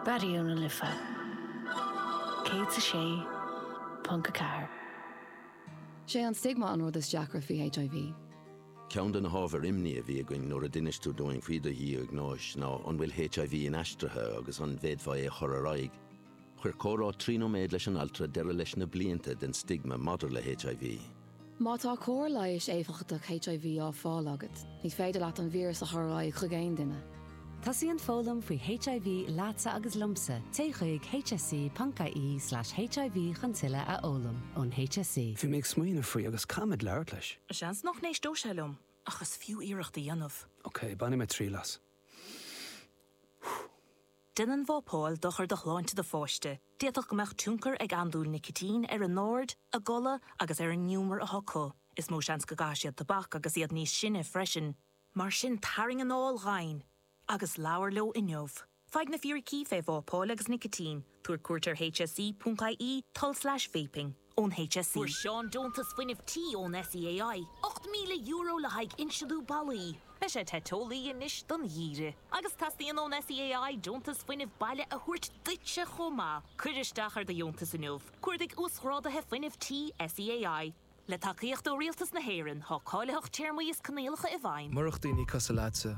Raidió na Life 106.4. Is é an stigma an rud is deacra faoi HIV. Ceann de na hábhair imní a bhí againn nuair a d'inis tú dúinn faoi do dhiagnóis ná an bhfuil HIV inaistrithe agus an bhféadfá é a chur ar aghaidh. Chuir comhrá trí nóiméad leis an altra deireadh leis na blianta den stigma maidir le HIV. Má tá cóir leighis éifeachtach HIV á fáil agat, ní féidir leat an víreas a chur ar aghaidh chuig aon duine. Tosaíonn foghlaim faoi HIV leatsa agus liomsa, téigh chuig hse.ie slash hiv chun tuilleadh a fhoghlaim. Ón HSE. Bhí mé ag smaoineamh faoi agus caithfimid labhairt leis. Seans nach n-éisteodh sé liom, ach is fiú iarracht a dhéanamh. Ok, bainfidh mé triail as. Déanann vapáil dochar do shláinte do pháiste, d'fhéadfadh go mbeadh tionchar ag andúil nicitín ar a n-aird, a gcodladh agus ar an ngiúmar atá acu. Is mó seans go gcaithfidh siad tobac agus iad níos sine freisin. Mar sin tarraing anáil dhomhain agus labhair leo inniu. Faigh na fíricí faoi vápáil agus nicitín, tabhair cuairt ar hse.ie, tulslais vaping. ón HSE. Fuair Seán deontas fuinnimh tí ón SEAI, €8,000 le haghaidh insliú ballaí. Beidh sé te teolaí anois don gheimhreadh agus teastaíonn ón SEAI deontas fuinnimh baile a thabhairt duitse chomh maith. Cuir isteach ar do dheontas inniu, cuardaigh Uasghrádaithe Fuinnimh Tí SEAI. Le tacaíocht ó Rialtas na hÉireann, tá cáilitheacht téarmaí is coinníollacha i bhfeidhm. Murach daoine cosúil leatsa,